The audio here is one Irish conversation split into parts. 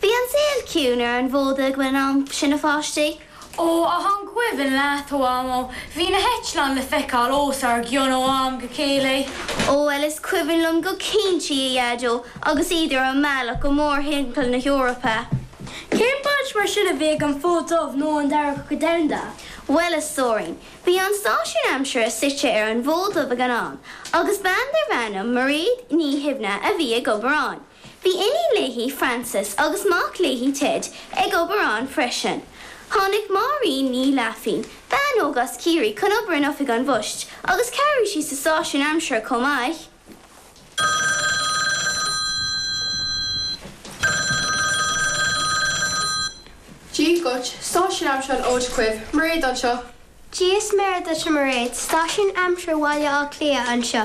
Bhí an saol ciúin ar an bhFód Dubh ag an am sin, a pháistí. Ó, ach an cuimhin leat, a Mhamó, bhí na heitleáin le feiceáil os ár gcionn ó am go chéile. Ó, bhuel, is cuimhin liom go cinnte, a Dhaideo, agus iad ar a mbealach go Mór-Roinn na hEorpa. Cén baint mar sin a bhí ag an Fód Dubh leis an Dara Cogadh Domhanda? Bhuel, a Stóirín, Bhí an stáisiún aimsire suite ar an bhFód Dubh ag an am agus bean darbh ainm Mairéad Ní Shuibhne a bhí ag obair ann. Bhí iníon léi, Frances, agus mac léi, Ted, ag obair ann freisin. Tháinig Máirín Ní Fhlaithbhín, bean óg as Ciarraí chun obair in Oifig an Phoist agus chabhraigh sí sa stáisiún aimsire chomh maith. Dia dhuit, stáisiún aimsire an Fhóid Dhuibh, Mairéad anseo. Dia is Muire duit a Mhairéad, stáisiún aimsire Bhaile Átha Cliath anseo.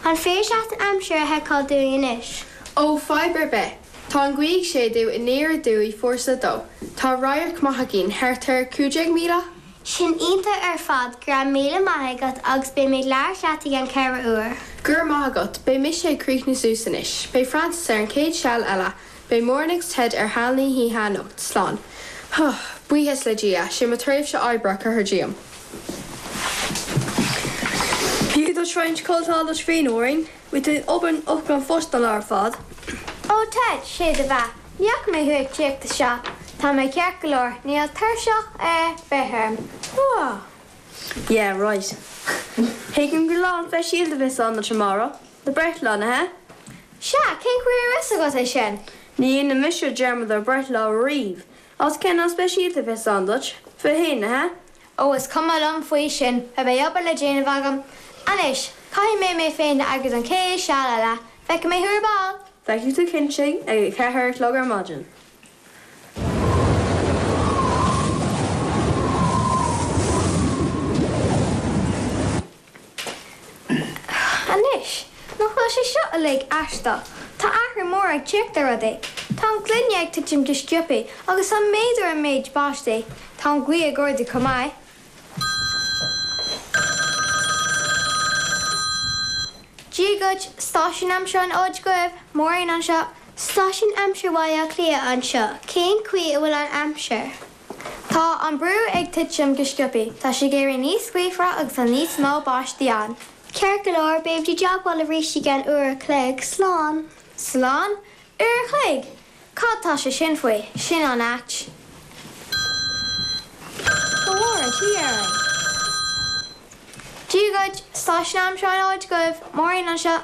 An féidir leat an aimsir a sheiceáil dúinn anois? Ó, fadhb ar bith. Tá an ghaoth ag séideadh aniar aduaidh fórsa a dó. Tá radharc maith againn, thart ar 15 míle? Sin iontach ar fad, go raibh míle maith agat agus beidh mé ag labhairt leat i gceann ceithre uair. Go raibh maith agat, beidh mise ag críochnú suas anois. Beidh Frances ar an chéad seal eile, beidh Máirín agus Ted ar sheal na hoíche anocht, slán. Huth! Buíochas le Dia, sin mo thréimhse oibre curtha díom. Gabh agus faigh roinnt codlata duit féin, a Mháirín. Bhí tú ag obair in Oifig an Phosta an lá ar fad. Ó Ted, is é do bheatha. Ní fhaca mé thú ag tíocht isteach. Tá mé ceart go leor. Níl tuirse ar bith orm. Whoa. Yeah, right. Tuigim gur lá an-speisialta a bheas ann duit amárach, do breithlá, nach ea? Sea, cén chaoi a raibh a fhios agat é sin? Ní dhéanann mise dearmad ar bhreithlá ariamh. Agus sin lá an-speisialta a bheas ann duit? Fiche a haon, nach ea? Ó, is cuma liom faoi sin, beidh obair le déanamh agam. Anois, caithfidh mé mé féin a eagrú don chéad seal eile. Feicfidh mé thú ar ball! Feicfidh tú cinnte, ag a ceathair a chlog ar maidin. Anois, nach bhfuil sé seo uilig aisteach? Tá athrú mór ag tíocht ar rudaí. Tá an ghloine ag titim go sciobtha agus tá méadú ar an méid báistí. Tá an ghaoth ag ardú chomh maith. Dia dhuit, stáisiún aimsire an Fhóid Dhuibh, Máirín anseo. Stáisiún aimsire Bhaile Átha Cliath anseo, cén chaoi a bhfuil an aimsir? Tá an brú ag titim go sciobtha. Tá sé ag éirí níos gaofaire agus tá níos mó báistí ann. Ceart go leor, beimid i dteagmháil leat arís i gceann uair a chloig. Slán. Slán? Uair a chloig? Cad tá sé sin faoi? Sin an-ait. Go bhfóire an Tiarna orainn. Dia dhuit, Stáisiún Aimsire an Fhóid Dhuibh. Máirín anseo.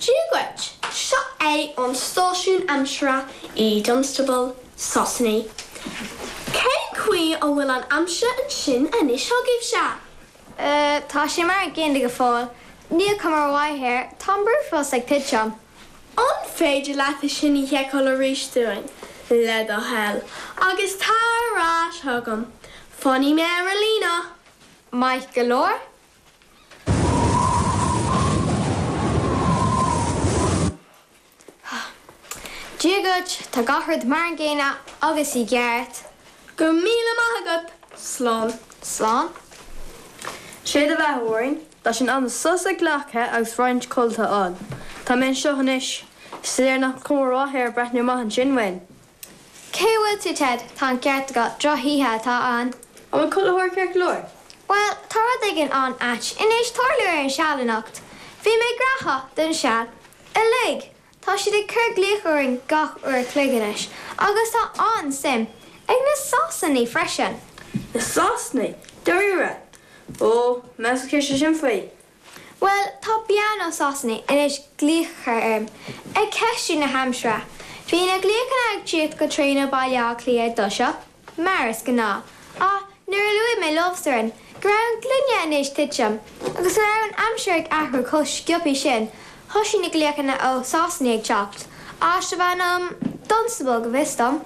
Dia dhuit, seo é an stáisiún aimsire i Dunstable, Sasana. Cén chaoi a bhfuil an aimsir ansin anois agaibhse? Tá sé mar an gcéanna go fóill. Níl cuma mhaith air, tá an brú fós ag titim. An féidir leat é sin a sheiceáil arís dúinn, le do thoil, agus tar ar ais chugam. Fanfaidh mé ar an líne. Maith go leor. Dia dhuit, tá gach rud mar an gcéanna agus i gceart. Go raibh míle maith agat. Slán. Slán. Sé do bheatha, a Mháirín. Tá sé in am sos a ghlacadh agus roinnt codlata a fháil. Tá mé anseo anois. Is léir nach cuma ar bith ar breathnú amach ansin, a Mháirín. Cé a bhfuil tú, Ted? Tá an ceart agat, drochoíche atá ann. An bhfuil chuile shórt ceart go leor? Bhuel, tá rud éigin an-ait in éis tarlú ar an seal anocht. Bhí mé graitheach don seal uilig. Tá siad ag cur glaoch orainn gach uair an chloig anois, agus tá an-suim ag na Sasanaigh freisin. Na Sasanaigh? Dáiríre? Ó, meas tú céard tá sé sin faoi. Bhuel, tá bean ó Sasana in éis glaoch orm ag ceistiú na haimsire. Bhí na glaochanna ag tíocht go tréan ó Bhaile Átha Cliath i dtoiseach, mar is gnáth, ach nuair a luaigh mé leofasan, go raibh an gloine in éis titim, agus go raibh an aimsir ag athrú chomh sciobthaí sin, thoisigh na glaochanna ó Sasana ag teacht, áit darbh ainm Dunstable, go bhfios dom.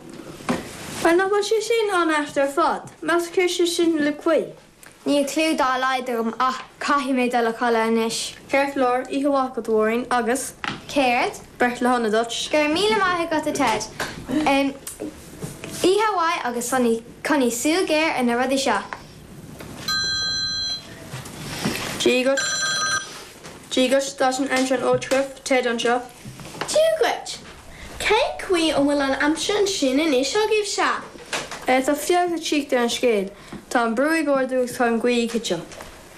Bhuel, nach bhfuil sé sin an-ait ar fad, meas tú céard sé sin le gaoth. Níl clú dá laghad agam ach caithfidh mé dul a chodladh anois. Ceart go leor, oíche mhaith agat, a Mháirín, agus. Céard? Breithlá sona duit. Go raibh míle maith agat, a Ted. Oíche mhaith agus coinnigh súil ghéar ar na rudaí seo. Dia dhuit. Dia dhuit, stáisiún aimsire an Fhóid Duibh, Ted anseo. Dia dhuit! Cén chaoi a bhfuil an aimsir ansin anois agaibhse? Tá feabhas ag teacht ar an scéal, tá an brú ag ardú agus tá an ghaoth ag titim.